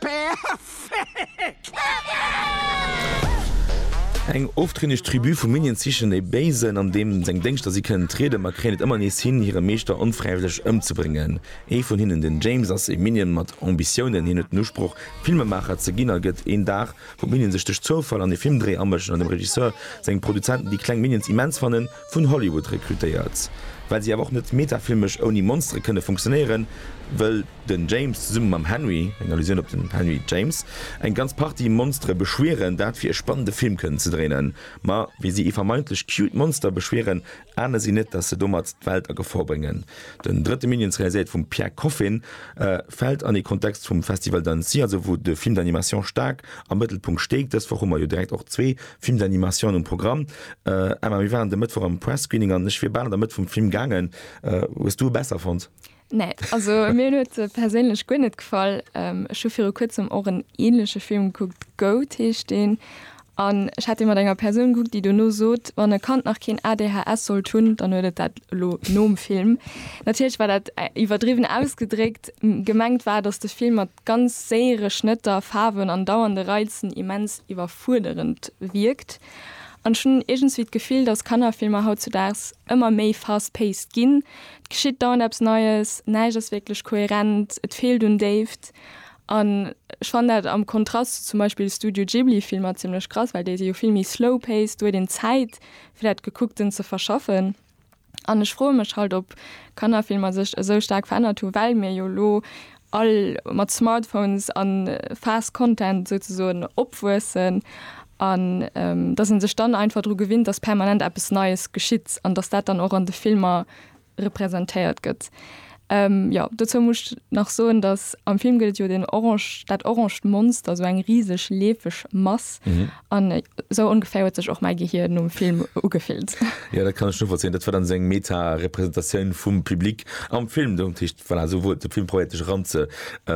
Perfekt! Eng oftrinneg Tribu vu Minions sichen e Béisen, an deem seng Déngschter si kënnen trieden, ma kréien et ëmmer nees hin, hire Meeschter onfräiwëlleg ëmzebréngen. Ee vun hinnen, den James, ass ee Minion mat Ambitiounen. Hien huet den Usproch, Filmemaacher ze ginn, a gëtt een Dag, wou d'Minions sech duerch Zoufall an ee Filmdréi amëschen an dem Regisseur seng Produzenten déi kleng Minions immens fannen, Vun Hollywood rekrutéiert, well si awer och net metafilmesch ouni Monstere kënne funktionéieren, wëll den James zesumme mam Henry, eng Allusioun op den Henry James, eng ganz Partie Monstere beschwieren, dat fir e spannende Film kënnen ze dréinen. Ma wéi si ee vermeintlech cute Monster beschwieren, ahne si net, dass se domat d'Welt a Gefor bréngen. Den drëtte Minions, realiséiert vum Pierre Coffin, fält an ee Kontext vum Festival d'Annecy, also wou de Film d'animation staark am Mëttelpunkt steet. Dës Woch hu mer jo direkt och zwee Filmsanimatioun um Programm. Emma, mir waren de Mëttwoch am Press-Screening an ech wier bal an der Mëtt vum Film gaangen. Hues du e besser fonnt? Nee, also mir huet e perséinlech guer net gefall. Ech hu viru kuerzem och en änleche Film gekuckt, Goat heescht deen, an ech hat dee mat enger Persoun gekuckt, déi dono sot, wann e Kand nach keen ADHS sollt hunn, dann huet et dat elo nom Film. Natierlech war dat iwwerdriwwen ausgedréckt. Gemengt war, datt de Film mat ganz séiere Schnëtter, Faarwen an dauernde Reizen immens iwwerfuerderend wierkt. An ech hunn iergendswéi d'Gefill, dass Kannerfilmer hautzudaags ëmmer méi fast-paced ginn, et geschitt dauernd eppes Neies, näischt ass wierklech kohärent, et feelt un Déift. An ech fannen dat am Kontrast zu zum Beispill Studio-Ghibli-Filmer zimmlech krass, well déi si jo vill méi slow-paced, do huet een Zäit, fir dat Gekuckten ze verschaffen. An ech froe mech halt, ob Kannerfilmer sech esou staark verännert hu well mir jo elo all mat Smartphones a fast content souzesoen opwuessen an datt ee sech dann einfach dru gewinnt, datt permanent eppes Neies geschitt an datt dat dann och an de Filmer representéiert gëtt. Jo, dozou muss ech nach soen, datt am Film gëtt et jo deen orange, dat oranged Monster, esou eng riseg leefeg Mass. An esou ongeféier huet sech och mäi Gehir nom Film ugefillt. Jo, dat kann ech novollzéien. Dat war dann esou eng Meta-Representatioun vum Public am Film. Dat heescht, voilà, esou wor et. De Film probéiert dech eran ze,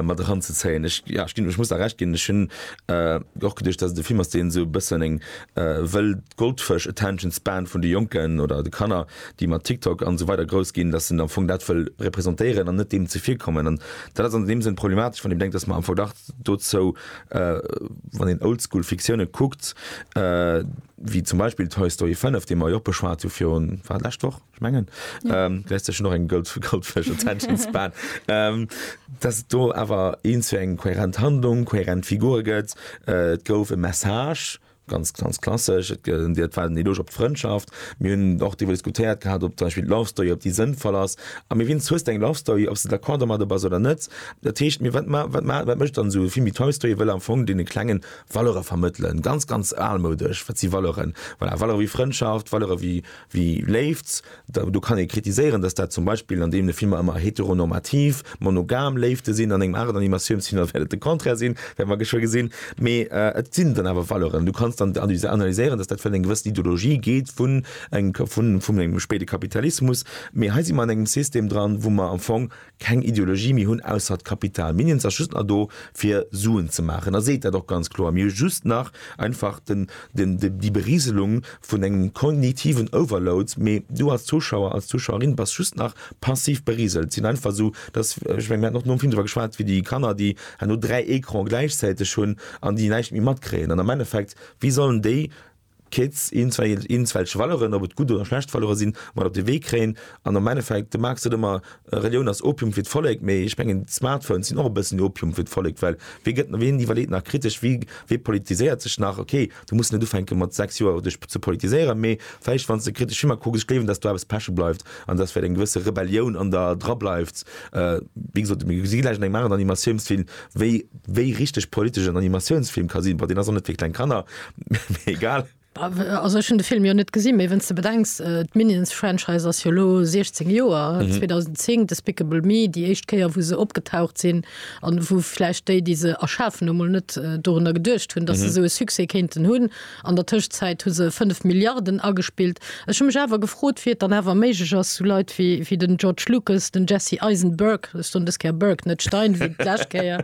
mat eran ze zéien. Ech, ja, ech ginn, ech muss der Recht ginn, ech hunn och geduecht, datt et e Film ass, deen esou e bëssen eng wëll d'Goldfësch-Attention-Span vun de Jonken oder de Kanner déi mat TikTok an esou weider grouss ginn, datt en am Fong dat wëll representéieren an net deem ze vir kommen. An dat ass an deem Sënn problematesch, wann een bedenkt, datt mer am Fong dach dozou, wann een oldschool Fiktioune kuckt, wéi zum Beispill Toy Story 5, dee mer jo och beschwat hu virun, war et lescht Woch? Ech mengen, du häss dech un och eng goldfish attention span, datt et do awer eens fir eng kohärent Handlung, kohärent Figure gëtt. Et gouf e Message. Ganz, ganz klassesch. Et gëtt dir d'Welt en Eloge op d'Frëndschaft. Mir hunn och driwwer diskutéiert gehat, ob zum Beispill d'Lovestory, ob déi sënnvoll ass. A mir wins, hues de eng Lovestory, ob s de d'accord domadder bass oder net. Dat heescht, mir wat ma, wat ma, wat mécht dann esou e Film wéi Toy Story? E wëll am Fong deene Klengen Valeure vermëttelen. Ganz, ganz almoudesch. Wat si Valeuren? Voilà, Valeure wéi Frëndschaft, Valeure wéi. Wie Léift, do kann ee kritiséieren, datt dat zum Beispill an deene Filmer ëmmer heteronormativ, monogam Léifte sinn, an engem aneren Animatiounsfilmer wäert et de Contraire sinn, wäerte mer geschwë gesinn. Mee et sinn dann awer Valeuren. Du kanns dann analyséieren, datt dat vläicht eng gewëss Ideologie geet vun engem spéide Kapitalismus. Mee hei si mer an engem System dran, wou mer am Fong keng Ideologie méi hunn ausser d'Kapital. Mir Indiens ass just nach do fir Suen ze maachen a seet dat och ganz kloer. Mir hu just nach einfach den, den, déi Berieselung vun engem kognitiven Overload, mee du als Zuschauer, als Zuschauerin bass just nach passiv berieselt. Sinn einfach esou, dass, ech menge mir haten och nom Film driwwer geschwat, wéi déi Kanner déi herno dräi Ecrane gläichzäiteg hunn an déi näischt méi matkréien an am Endeffekt wéi sollen déi, Kids, iergendwelche Valeuren, ob et gutt oder schlecht Valeuren sinn, mat op de Wee kréien. An am Endeffekt, de Marx sot ëmmer, Relioun ass Opium fir d'Vollek, mee ech mengen d'Smartphones sinn och e bëssen Opium fir d'Vollek, well wee gëtt, ween iwwerleet nach kritesch, wee, wee politiséiert sech nach? Ok, du muss net ufänke mat 6 Joer dech ze politiséieren, mee vläicht wann s de kritesch ëmmer kucks, ech gleewen, datt do eppes peche bleift an datt vläicht eng gewësse Rebellioun an der dra bleift. Wéi gesot, mir si gläich an engem aneren Animatiounsfilm, Wéi wéi richteg politesch en Animatiounsfilm ka sinn, bon, deen ass och net fir kleng Kanner, mee egal. Also ech hunn de Film jo net gesinn, mee wénn s de bedenks, d'Minions-Franchise ass jo elo 16 Joer, 2010 Despicable Me, déi éischt Kéier wou se opgetaucht sinn, an wou vläicht déi, déi se erschafen hu mol net dorunner geduecht hunn, datt se esou e Succès kéinten hunn. An der Tëschzäit hu se 5 Milliarden agespillt. Ech hu mech awer gefrot, wéi et dann awer méiglech ass, sou Leit wéi den George Lucas, den Jesse Eisenberg, ech soen dës Kéier Berg, net Stein, wéi d'lescht Kéier,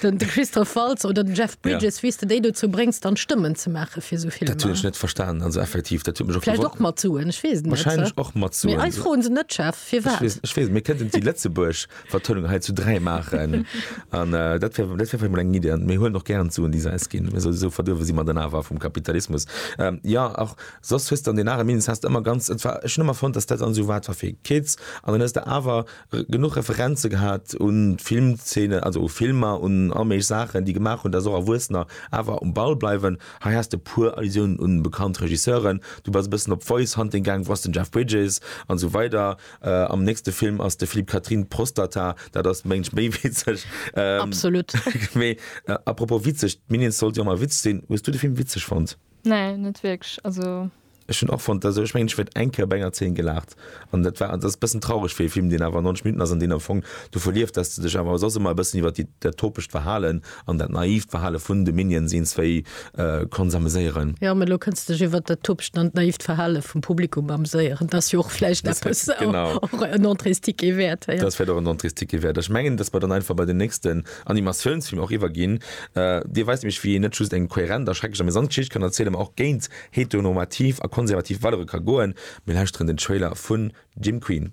den Christoph Waltz oder den Jeff Bridges, wéi s de déi dozou bréngs, dann Stëmmen ze maache fir sou Filmer. Dat hunn ech net verstanen. Also effektiv, dat huet mech och gewonnert. Vläicht och mat Suen, ech weess et net. Wahrscheinlech och mat Suen. Mee eis froen se net, Jeff, firwat? Ech weess et net. Mee kënnten si Lëtzebuerg? Vertënnung hei zu dräi maachen an äh, dat wär, dat wär vielleicht mal eng Idee. Mir huelen och gären zu un déi Säis ginn. Mir sowieso verduerwe si mer dann awer vum Kapitalismus. Ähm, ja, och soss hues dann den Arrêt Minus hast ëmmer ganz et war ech ëmmer fonnt, dass dat an sou wat war fir Kids an dann hues de awer genuch Referenze gehat un Filmzeene, also u Filmer, un all méiglich Saachen, déi gemaach hunn, dass och Erwuessener awer um Ball bleiwen. Hei has de puer Allusiounen un bekannt Regisseuren, du bass e bëssen op Voice Hunting gaang, wou ass den Jeff Bridges an sou weider. Am nächste Film ass de Philippe Catherine Prostata, dat ass mengt méi witzeg. Absolut. Mee apropos witzeg, d'Minions sollt jo mal Witz sinn. Hues du de Film witzeg fonnt? Nee, net wierklech. Also. Ech hunn och fonnt, also ech mengen ech huet eng Kéier op enger Zeen gelaacht an dat war, an dat ass e bëssen traureg fir e Film, deen awer 90 Minutten ass an deen am Fong du verlieft, dass de dech awer soss ëmmer e bëssen iwwer dat topegt Verhalen An dat naiivt Verhale vun de Minions eens wéi konnt s'ameséieren. Jo, mee elo kënns de dech iwwert dat Topegt an d'naiivt Verhale vum Publikum amséieren. T'ass jo och vläicht eppes, och en Entréesticket wäert. T'ass vläicht och en Entréesticket wäert. Ech mengen, dass mer dann einfach bei den nächsten Animatiounsfilm och iwwerginn. Dir weist nämlech, wéi een net just eng kohärent a schrecklech amusant Geschicht kann erzielen, mä och géint heteronormativ a konservativ Valere ka goen. Mir lauschteren den Trailer vun Jim Queen.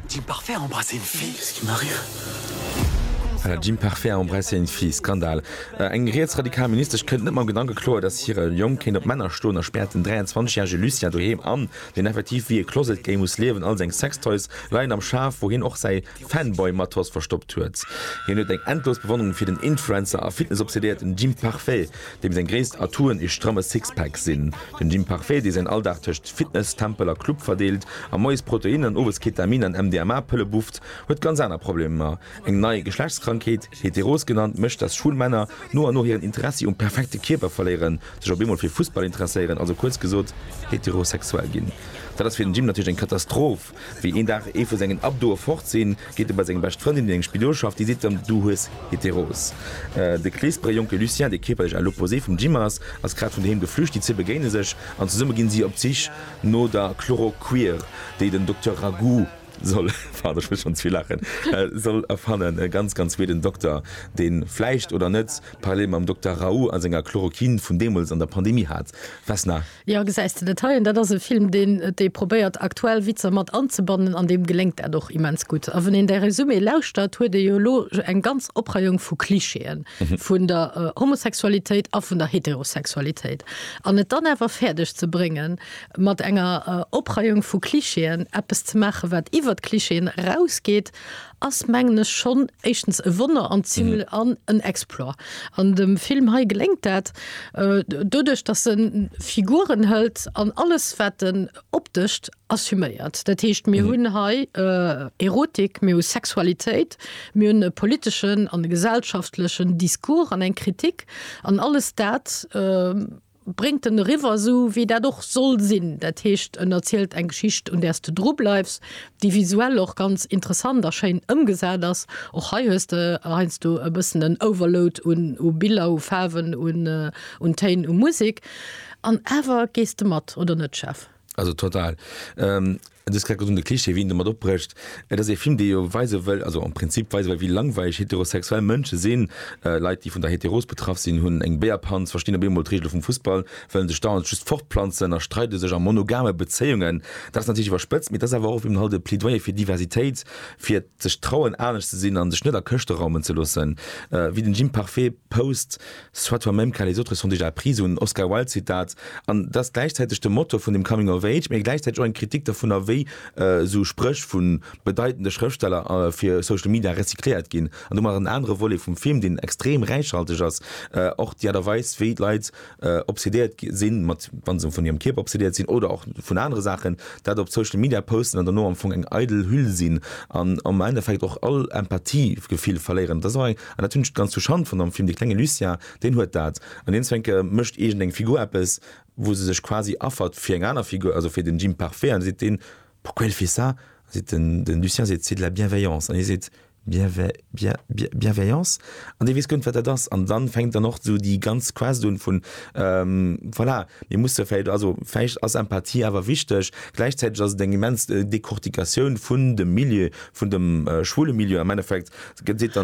D'Imparfait a embrassé une fille, qu'est-ce qui m'arrive? D'Imparfait a embrassé une fille, Skandal! Eng rietsradikal Ministesch kënnt net mam Gedanke kloer, datt hire Jong kéint op Männer stoen a späert den 23 järege Lucien doheem an, deen effektiv wéi e Closet Gay muss liewen. All seng Sextoys leien am Schaf, wou hien och säi Fanboy-Matos verstoppt huet. Hien huet eng endlos Bewonnerung fir den Influencer a Fitnessobsedéierten Jim Parfait. Deem seng gréisst Atouen ee stramme Sixpack sinn. Den Jim Parfait, dee säin Alldag tëscht Fitness, Tempel a Club verdeelt a moies Protein an owes Ketamin an MDMA-Pëlle bufft, huet ganz aner Problemer. Eng nei Geschlechtskrankheet, Heteros genannt, mécht, dass schwul Männer no an no hiren Interessi um perfekte Kierper verléieren, sech op eemol fir Fussball interesséieren, also kuerz gesot, heterosexuell ginn. Dat ass fir den Jim natierlech eng Katastroph. Wéi een Dag ee vu sengen Abdoe fort sinn, geet e bei seng bescht Frëndin, déi eng Spidol schafft, déi seet em, Du hues Heteros. De kleespere jonke Lucien, dee kierperlech à l'opposé vum Jim ass, ass grad vun doheem geflücht. Déi zwee begéine sech an zesumme ginn si op d'Sich no der Chloroquir, déi den Dokter Ragu soll, pardon, ech muss schonn ze vill laachen, soll erfannen. E ganz, ganz weeden Dokter, deen, vläicht oder net, Parallele mam Dokter Raoult a senger Chloroquine vun deemools an der Pandemie hat. Vesna. Jo, gesäis de dat hei? Dat ass e Film, deen dee probéiert, aktuell Witzer mat anzebannen, an deem geléngt dat och immens gutt. A wann een däi Résumé lauschtert, huet ee jo elo eng ganz Opreiung vu Klischeeë vun der Homosexualitéit a vun der Heterosexualitéit. An et dann awer fäerdeg ze bréngen, mat enger Opreiung vu Klischeeën eppes ze maachen, wat iwwer d'Klischeeën erausgeet ass mengen ech schonn éischtens e Wonner an ziml an en Exploit. An dem Film hei geléngt dat doduerch, datt en Figuren hëlt an alles wat en optescht assuméiert. Dat heescht, mir hunn hei Erotik, mir hu Sexualitéit, mir hunn e politeschen an e gesellschaftlechen Discours an eng Kritik an alles dat bréngt en eriwwer, esou wéi dat och soll sinn, dat heescht en erzielt eng Geschicht un där s de dru bleifs, déi visuell och ganz interessant a schéin ëmgesat ass. Och hei hues de heiansdo e bëssen en Overload u Biller, u Faarwen, un Téin, u Musek, an awer gees de mat, oder net Jeff? Also total. Ähm, du hast gesagt, de Klischee, wien damit opbrecht. Äh, das ist ein Film, der jo weise will, also am Prinzip weise will, wie langweilig heterosexuell Menschen sind. Äh, Leute, die von der Heteros betraff sind, hun eng Beerpanz, verstehen op einmal d'Regele vum Fussball, wellen sech dauernd just fortplanzen a streide sech a monogame Beziehungen. Das ist natürlich iwwerspëtzt, mee das ist awer och eben halt e Plädoyer fir Diversitéit, fir sech trauen, anescht ze sinn an sech net a Këschte raumen ze loossen. Äh, wéi den Jim Parfait post, Soit toi même car les autres sont déjà pris, esou en Oscar Wilde Zitat, an et ass gläichzäiteg de Motor vun dem Coming of Age, mee gläichzäiteg och eng Kritik dervunner wéi esou Spréch vu bedeitende Schrëftsteller fir Social Media recycléiert ginn. An domat ass en anere Volet vum Film, deen extrem räichhalteg ass, och déi Aart a Weis wéi d'Leit obsedéiert sinn mat, wa se vun hirem Kierper obsedéiert sinn oder och vun anere Saachen, dat op Social Media posten an dono am Fong eng eidel Hüll sinn an am Endeffekt och all Empathiegefill verléieren. An dat hunn ech ganz zu Schand fonnt am Film, dee klenge Lucien, deen huet dat. An deen Zwenke mécht iergend eng Figur eppes, wou se sech quasi affert fir eng aner Figur, also fir den Jim Parfait, an da seet deen, Pourquoi elle fait ça? Da seet den den Lucien seet, C'est de la bienveillance. An hie seet, Bien ve bien bien bienveillance? An dee weess guer net, wat dat ass. An da fänkt dann och esou déi ganz Quest un vun, voilà, mir musse vläicht, also vläicht ass Empathie awer wichteg. Gläichzäiteg ass et eng immens Decortication vun dem Milieu, vun dem schwule Milieu am Endeffekt,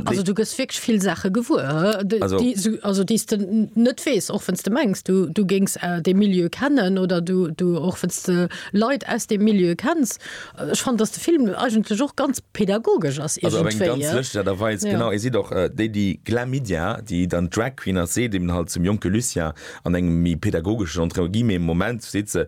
Also du gëss wierklech vill Saache gewuer, déi s de net weess, och wann s de mengs, du géings dee Milieu kennen oder och wann s de Leit aus deem Milieu kenns. Ech fannen, datt de Film eigentlech och ganz pedagogesch ass iergendwéi. Also op eng ganz lëschteg Aart a Weis, genau. Ee seet och, déi, déi Glamidia, déi dann d'Drag Queen ass, seet eben halt zum jonke Lucien an engem méi pedagogeschen, entre guillemets, Moment, seet se,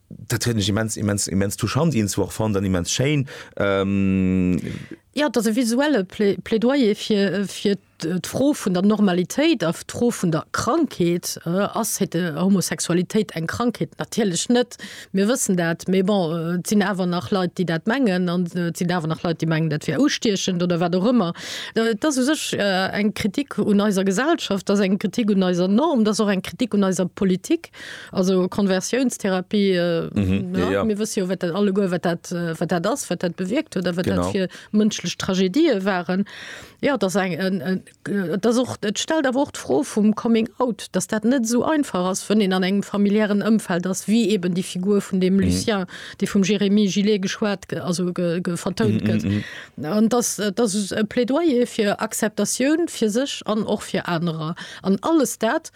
Dat huet mech immens immens immens touchant eens war fand an immens Schein. Ähm, Ja dat e visuelle Plä- Plädoyer fir fir d'Fro vun der Normalitéit a d'Fro vun der Krankheet. Äh, ass hete Homosexualitéit eng Krankheet? Natierlech net, mir wëssen dat. Mee bon, äh, et sinn awer nach Leit, déi dat mengen an äh, et sinn awer nach Leit, déi mengen, dat wär ustiechend oder wat och ëmmer. Äh, Et ass u sech äh, eng Kritik un eiser Gesellschaft, et ass eng Kritik un eiser Norm, et ass och eng Kritik un eiser Politik. Also Konversiounstherapie, mir wësse jo wat dat alleguer wat dat wat dat ass, wat dat bewierkt huet a wat dat fir mënschlech Tragedië waren. Jo et ass eng et ass och et stellt awer och d'Fro vum Coming out, datt dat net esou einfach ass, wann een an engem familiären Ëmfeld ass wéi eben déi Figur vun deem Lucien, dee vum Jérémy Gillet geschwat also vertount gëtt. An datt datt e Plädoyer fir Acceptatioun fir sech an och fir anerer an alles dat,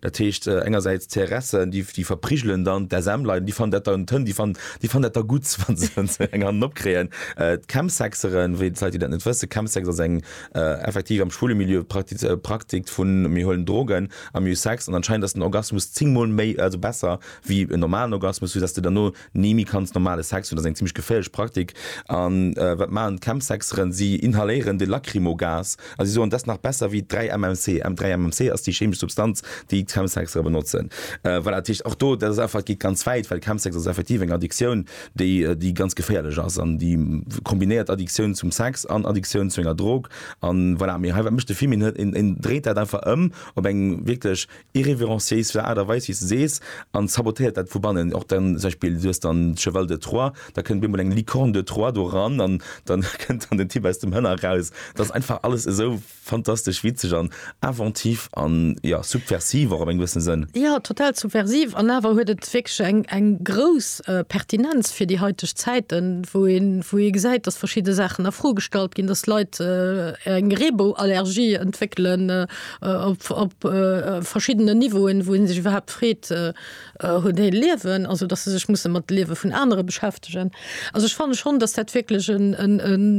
Dat heescht engersäits d'CRSen, déi verprigelen dann d'SMler, déi fannen dat dann toll, déi fannen dat da gutt, wa se eng Hand opkréien. D'Chemsexeren, wéi d'Leit, déi dat net wëssen, Chemsex ass eng, effektiv am schwule Milieu, Praktik vun, mir huelen Drogen a mir hu Sex an anscheinend ass den Orgasmus zéng mol méi, also besser wéi en normalen Orgasmus, sou datt s de derno Ni méi kanns normale Sex hunn ass eng zimmlech geféierlech Praktik. An wat maachen d'Chemsexeren? Si inhaléieren de Lacrymogas a si soen, dass nach besser wéi 3 MMC. M 3 MMC ass déi chemesch Substanz, déi d'Chemsexere benotzen. Voilà, dat heescht och do, dat ass einfach, et geet ganz wäit, well Chemsex ass effektiv eng Addiktioun, déi, déi ganz geféierlech ass an déi kombinéiert Addiktioun zum Sex an Addiktioun zu enger Drog. An voilà, mee hei, wat mécht de Fimin? Hien, hien dréit dat einfach ëm op eng wierklech irrévérenciéis vun der Aart a Weis, wéi s de sees, an sabotéiert dat vu bannen. Och dann zum Beispill, du hues dann de Cheval de Troie, da kënnt op eemol eng Licorne de Troie do ran an dann kënnt dann den Typ aus dem Hënner raus. Dat ass einfach alles esou fantastesch witzeg an inventif an, jo, subversiv och op eng gewëssen Sënn. Jo, total subversiv an awer huet et wierklech eng, eng grouss Pertinenz fir déi heiteg Zäiten, wou een, wou ee gesäit, dass verschidde Saachen a Fro gestallt ginn, dass Leit eng Reebou-Allergie entwéckelen, op verschiddenen Niveauen, wou ee sech iwwerhaapt freet, hunn déi e Liewen, also datt se sech musse mat de Liewe vun anere beschäftegen. Also ech fanne schonn, datt dat wierklech e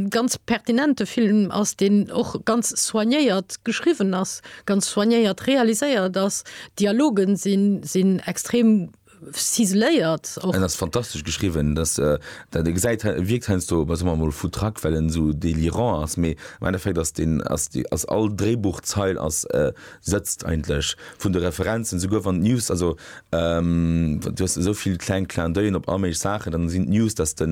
ganz pertinente Film ass, deen och ganz soignéiert geschriwwen ass, ganz soignéiert realiséiert ass. D'Dialogen sinn extrem Ciseléiert och. En ass fantastesch geschriwwen, dass dat e gesäit wierkt heiansdo bei soe mol foutraque well en esou délirant ass, mee am Endeffekt ass deen ass déi ass all Dréibuchzeil ass sëtzt eigentlech vun de Referenzen esouguer wann d'News also du hues esou vill kleng Clin d'oeil'en op all méiglech Saachen, dann sinn d'News dass de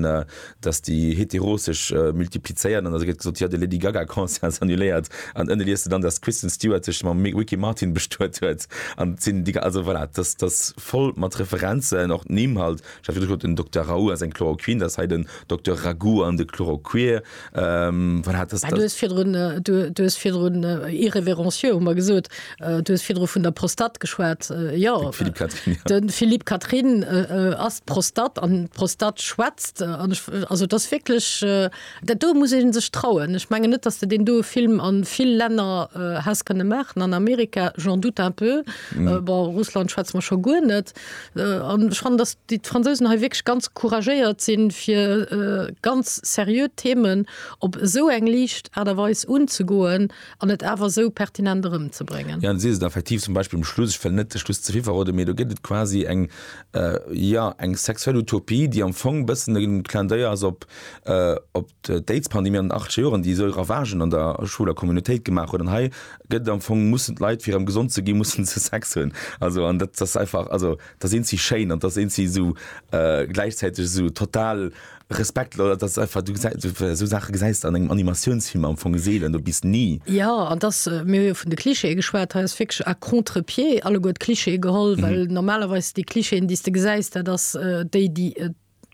dass déi Heteros sech multiplizéieren, an da gëtt gesot, jo, de Lady Gaga Concert ass annuléiert, an ënne liest de dann, dass d'Kristen Stewart sech mam Ricky Martin bestuet huet, an et sinn déi, also voilà, dass dass voll mat Referenzen, och d'Nimm halt, ech hat virdu gesot, den Dokter Raoult ass eng Chloroquine, dass hei den Dokter Ragout an de Chloroquir, voilà, dass. Mä du hues virdrun, du hues virdrun irrévérencieux, hu mer gesot. Du hues virdru vun der Prostat geschwat. Jo, de Philippe Catherine ass d'Prostat an d'Prostat schwätzt. Also dat ass wierklech, dat do muss ee sech trauen. Ech menge net, datt s de deen doe Film a vill Länner häss kënne maachen. An Amerika, j'en doute un peu. Bon, Russland schwätze mer scho guer net. An ech fannen, datt déi d'Fransousen hei wierklech ganz couragéiert sinn, fir ganz seriö Themen op esou eng liicht Aart a Weis unzegoen, An et awer esou pertinent erëmzebréngen. Jo, si se effektiv, zum Beispill um Schluss, ech wëll net de Schluss ze vill verroden, mee do gëtt et quasi eng, jo, eng sexuell Utopie, déi am Fong e bëssen e Clin d'oeil ass op d'Aidspandemie an den achtzeger Joren, déi esou Ravagen an der schwuler Communautéit gemaach huet. An hei gëtt et am Fong, mussen d'Leit, fir erëm gesond ze ginn, mussen se Sex hunn. Also, an dat ass einfach, also, da sinn si schéin an da sinn si esou gläichzäiteg esou total, Respekt Lola, dass du einfach du gesäis- du so Saache gesäis an engem Animatiounsfilm am Fong seelen, do bis ni. Ja, an dass, äh, mir hu jo vun de Clichéë geschwat, hei ass wierklech à contre-pied alleguer d'Cliché geholl, well normalerweis déi Clichéen, déi s de gesäis, dat ass äh, déi, déi et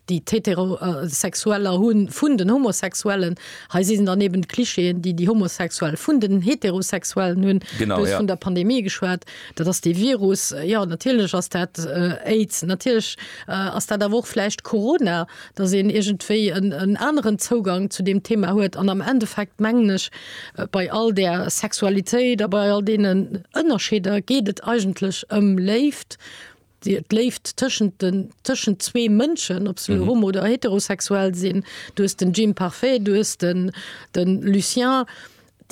déi d'Heterosexueller hu vun den Homosexuellen. Hei si dann eben d'Clichéen, déi déi Homosexuell vun den Heterosexuellen hunn. Genau, Du hues ja. vun der Pandemie geschwat. Dat ass dee Virus. Jo, natierlech ass dat Aids. Natierlech ass dat awer och vläicht Corona, datt een iergendwéi en aneren Zougang zu deem Thema huet. An am Endeffekt mengen ech, bei all där Sexualitéit a bei all deenen Ënnerscheeder geet et eigentlech ëm Léift. d'Léift tëschent den tëschent zwee Mënschen, ob se elo homo oder heterosexuell sinn, du hues den Jim Parfait, du hues den den Lucien,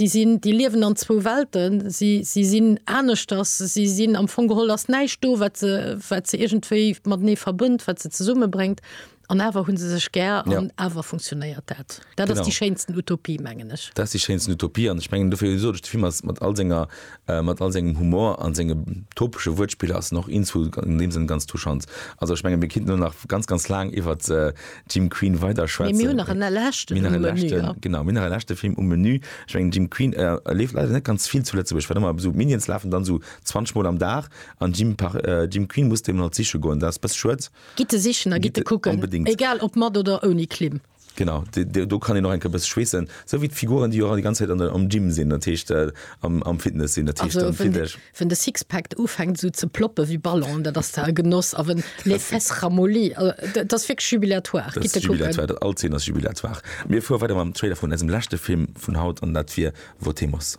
déi sinn déi liewen an zwou Welten, si si sinn aneschters, si sinn am Fong geholl ass näischt do wat se wat se iergendwéi matenee verbënnt, wat se zesummebréngt. An awer hu se sech gär an awer funktionéiert dat. Dat ass déi schéinsten Utopie, mengen ech. Dat ass déi schéinsten Utopie an ech mengen, dofir sot ech, de Film ass mat all senger, mat all sengem Humor a senge topesche Wuertspiller ass en och in zu an deem Sënn ganz touchant. Also ech mengen, mir kinnten elo nach ganz, ganz laang iwwert Jim Queen weider schwätzen. Mee mir hunn nach en leschten um Menü. Mir hunn nach e leschten, genau, mir hunn nach e leschte Film um Menü. Ech mengen, Jim Queen leeft leider net ganz vill zu Lëtzebuerg, well ëmmer esou Minions lafen dann esou 20 mol am Dag an Jim, Jim Queen musst een emol siche goen. Dat ass e bësse schued. Gitt e sichen a gitt e kucken, egal ob mat oder ouni Klimm. Genau, do kann een och eng Kéier e bësse schweessen, sou wéi d'Figuren, déi och déi ganz Zäit am Gym sinn, dat heescht am Fitness sinn. Dat heescht dann Fitness. Ween de Sixpack ufänkt esou ze ploppen ewéi Ballon, dat ass da e Genoss. A ween les fesses ramollies, dat ass wierklech jubilatoire. Gitt e kucken. All Zeen ass jubilatoire. Mir fuere weider mam Trailer vun eisem leschte Film vun haut, an dat wier Votemos.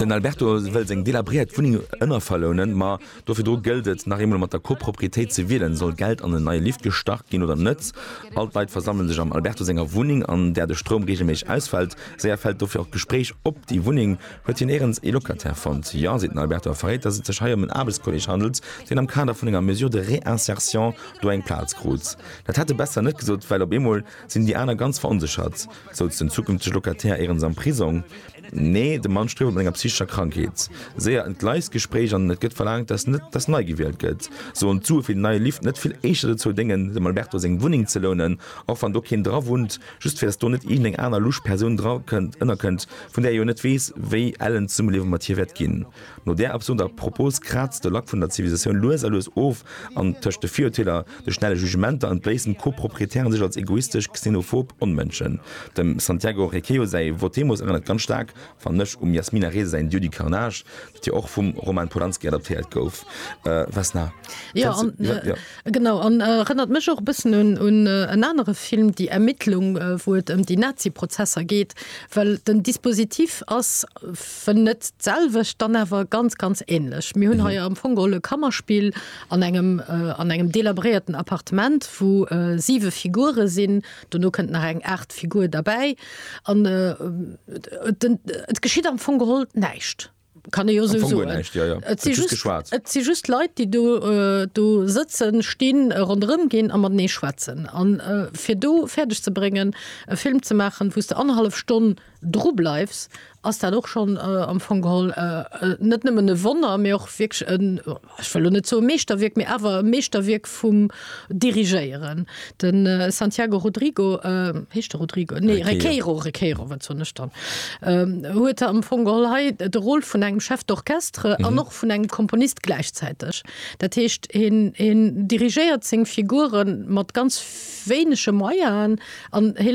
Den Alberto wëll seng delabréiert Wunneng ënnerverlounen, ma do virdru gëllt et, nach eemol mat der Koproprietéit ze wielen. Soll Geld an en neie Lift gestach ginn oder net? All d'Leit versammele sech am Alberto senger Wunneng, an där de Stroum reegelméisseg ausfält. Séier fält dofir och d'Gespréich op déi Wunneng. Huet hien éirens ee Locataire fonnt? Jo, seet den Alberto a verréit, datt et sech hei ëm en Aarbechtskolleeg handelt, deen am Kader vun enger Mesure de réinsertion do eng Plaz krut. Dat hätt e besser net gesot, well op eemol sinn déi aner ganz veronséchert, souz den zukünftege Locataire éirens am Prisong. Nee, de Mann strieft mat enger psychescher Krankheet. Séier en d'Leisgespréich an et gëtt verlaangt, datt net datt nei gewielt gëtt. Sollen d'Sue fir déi nei Liften net vill éischter dozou déngen, dem Alberto seng Wunneng ze lounen, och wann do keen dra wunnt, just fir datt do net iergend eng aner lusch Persoun dra kënnt, ënnerkënnt, vun där ee jo net weess, wéi ellen d'Zesummeliewe mat hir wäert ginn? No där absurder Propos kraazt de Lack vun der Zivilisatioun lues a lues of an tëscht de Virurteeler, de schnelle Jugementer an bléissen Co-Proprietären sech als egoistesch, xenophob Onmënschen. Dem Santiago Requejo säi Votemos erënnert ganz staark, fannen ech, um Yasmina Reza säin Dieu du carnage, dat jo och vum Roman Polanski adaptéiert gouf. Vesna, kennst du den? Jo. Genau, an erënnert mech och e bëssen un en anere Film, Die Ermittlung, wou et ëm déi Nazi-Prozesser geet, well den Dispositif ass, Wenn net d'selwecht, dann awer ganz, ganz ähnlech. Mir hunn hei am Fong geholl e Kammerspill an engem, an engem delabréierten Appartement, wou siwe Figure sinn, dono kënnt nach eng aacht Figur derbäi an et geschitt am Fong geholl näischt, kann ee jo esou soen. Et si just geschwat. Et si just Leit, déi do, do sëtzen, stinn, ronderëm ginn a matenee schwätzen. A fir do fäerdeg ze bréngen, e Film ze maachen, wou s de annerhallef Stonn, dru bleifs, ass dat och schonn am Fong geholl net nëmmen e Wonner, mee och wierklech en, ech wëll elo net soe Meeschterwierk, mee awer e Meeschterwierk vum Dirigéieren. De Santiago Rodrigo, heescht e Rodrigo? Nee, Requeiro, Requeiro, wat soen ech dann, huet am Fong geholl hei de Rôle vun engem Chef d'orchestre an och vun engem Komponist gläichzäiteg. Dat heescht, hien dirigéiert seng Figuren mat ganz wéinege Moyaen an hie.